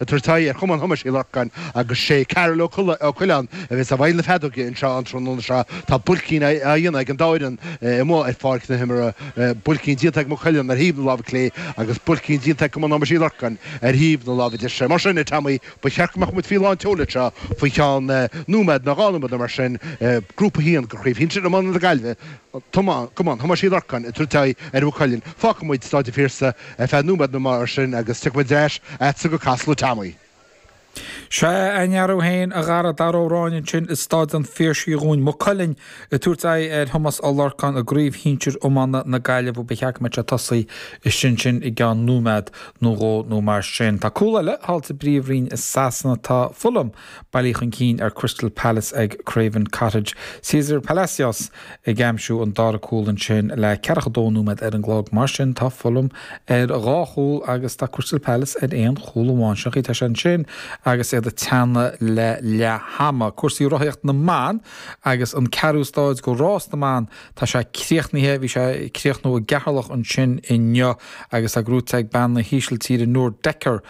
ag tabhairt aghaidh ar Chumann Thomáis Uí Lorcáin agus sé Karl Ó Coileáin a bheas i bhfeighil na feadóige anseo an tráthnóna seo. Tá buaircín á dhéanamh ag an dá fhoireann amuigh ar pháirc na himeartha, buaircín déanta ag Maigh Cuilinn ar thaobh na láimhe clé agus buaircín déanta ag Cumann Thomáis Uí Lorcáin ar thaobh na láimhe deise. Mar sin, a Tommy, ba cheart go mbeadh muid faoi lán tseoil anseo faoi cheann nóiméad nó dhá nóiméad nó mar sin. Grúpa a hAon go Chraobh Shinsir Iomána na Gaillimhe, Cumann Thomáis Uí Lorcáin, ag tabhairt aghaidh ar Mhaigh Cuilinn. Fágfaidh muid Stáid an Phiarsaigh. ar feadh nóiméad nó mar sin agus tiocfaidh muid ar ais a'dsa go Casla Tommy. Sea, a ndearúd féin, a Dhara, Dara Ó Ráinne ansin i Stáid an Phiarsaigh dhúinn, Maigh Cuilinn, ag tabhairt aghaidh ar Thomás Ó Lorcáin i gCraobh Shinsir Iomána na Gaillimhe ba cheart go mbeadh sé ag tosaí istigh ansin i gceann nóiméad nó dhó nó mar sin. Tá cúl eile thall sa bPríomhroinn i Sasana, tá Fulham. bailithe chun cinn ar Crystal Palace ag Craven Cottage. César Palacios ag aimsiú an dara cúl ansin le ceathracha dó nóiméad ar an gclog. Mar sin tá Fulham ar dhá chúl agus tá Crystal Palace ar aon chúl amháin. Sin an chaoi atá sé ansin agus iad ag teannadh le leath hama. Cúrsaí rothaíocht na mban agus an ceathrú stáid go rás na mban tá sé críochnaithe. Bhí sé ag críochnú i gCeatharlach ansin inniu agus tá gnóite ag bean na hÍsiltíre Noor Dekker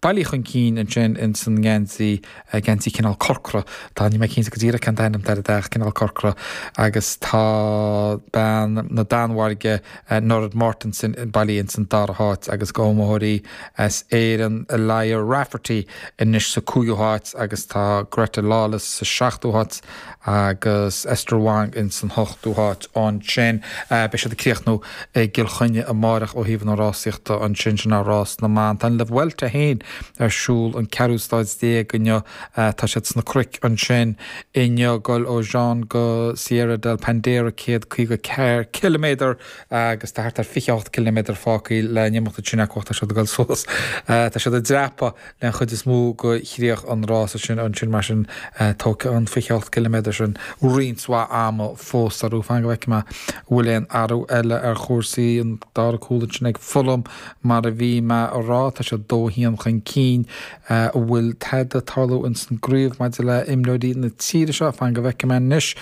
bailithe chun cinn ansin ins an ngeansaí, geansaí cineál corcra, tá, níl mé cinnte go díreach cén t-ainm atá air, ach cineál corcra agus tá bean na Danmhairge, Nurid Mortensen, bailithe ins an dara háit agus iomaitheoirí as Éireann, Aliyah Rafferty anois sa cúigiú háit agus tá Greta Lawless sa seachtú háit. agus Esther Wong ins an hochtú háit ansin. Beidh siad ag críochnú i gCill Chainnigh amárach ó thaobh na rásaíochta ansin, sin é rás na mban. Tá an La Vuelta féin ar siúl an ceathrú stáid déag inniu, tá siad sna cnoic ansin inniu, ag dul ó Jaén go Sierra de la Pandera céad caoga ceathair ciliméadar agus tá thart ar fiche hocht ciliméadar fágtha le n-imeacht ansin acu ach tá siad ag dul suas, tá siad ag dreapadh. den chuid is mó, go críoch an rása sin. Ansin, mar sin, tógfaidh an 28 gciliméadar sin roinnt mhaith ama fós orthu. Fan go bhfeicfidh mé an bhfuil aon athrú eile ar chúrsaí. An dara cúl ansin ag Fulham, mar a bhí mé a rá, tá siad 2 1 chun cinn. An bhfuil tada ag tarlú ins an gcraobh maidir le imreoirí na tíre seo? Fan go bhfeicfidh mé anois.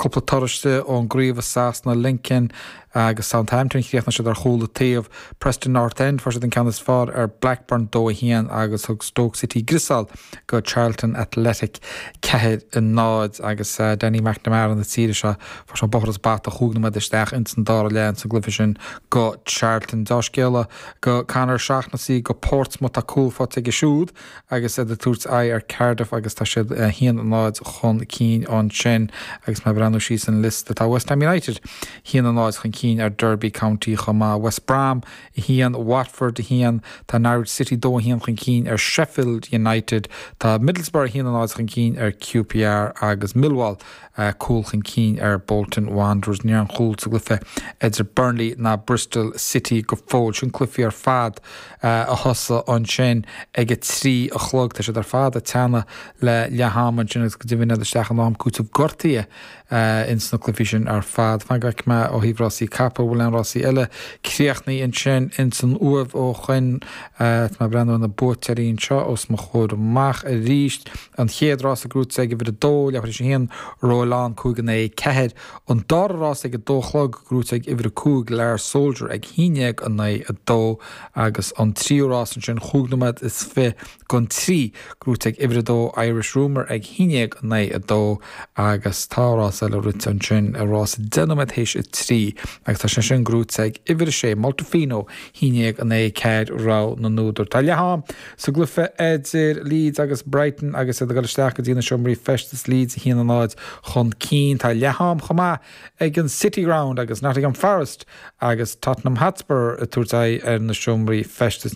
Cúpla toradh istigh ón gcraobh i Sasana, Lincoln, Agus Southampton chríochnaigh siad ar chúl an taobh. Preston North End fuair siad an ceann is fearr ar Blackburn, 2, 1, agus thug Stoke City griosáil go Charlton Athletic, 4, 0, agus Danny McNamara na tíre seo, fuair sé bóthar is bata, chúig nóiméad isteach ins an dara leath ins an gcluiche sin go Charlton. Dea-scéala go Conor Shaughnessy go Portsmouth, tá cúl faighte aige siúd. agus iad ag tabhairt aghaidh ar Cardiff agus tá siad 1-0 chun cinn ansin agus mé ag breathnú síos an liosta tá West Ham United 1-0 chun cinn ar Derby County chomh maith. West Brom 1, Watford 1, tá Norwich City 2 1 chun cinn ar Sheffield United, tá Middlesbrough 1-0 chun cinn ar QPR agus Millwall cúl chun cinn ar Bolton Wanderers. Níl aon chúl sa gcluiche idir Burnley ná Bristol City go fóill. Sin cluifí ar fad a thosaigh ansin ag a trí a chlog. Tá siad ar fad ag teannadh le leath-am ansin agus go deimhin iad isteach in am cúitimh gortuithe ins na cluifí sin ar fad. Fan go bhfeicfidh mé ó thaobh rásaí capall bhfuil aon rásaí eile críochnaithe ansin ins an Uaimh ó shoin. Tá mé ag breathnú ar na buaiteoirí anseo os mo chomhair amach aríst. An chéad rás gnóite ag uimhir a dó, leathmhír is a haon, ró a lán, cúig in aghaidh a ceathair. An dara rás ag a dó a chlog gnóite ag uimhir a cúig, Lear Soldier ag haon déag in aghaidh a dó. Agus an tríú rás ansin, chúig nóiméad is fiche don trí, gnóite ag uimhir a dó, Irish Rumour ag haon déag in aghaidh a dó. Agus tá rás eile rite ansin, rás deich nóiméad théis a trí, agus tá sé sin gnóite ag uimhir a sé, Moltefino haon déag in aghaidh a ceathair, Rogha na n-údar. Tá leath-am. Sa gcluiche idir Leeds agus Brighton agus iad ag dul isteach go dtí na seomraí feistis, Leeds 1-0 chun cinn. Tá leath-am chomh maith ag an City Ground agus Nottingham Forest agus Tottenham Hotspur ag tabhairt aghaidh ar na seomraí feistis.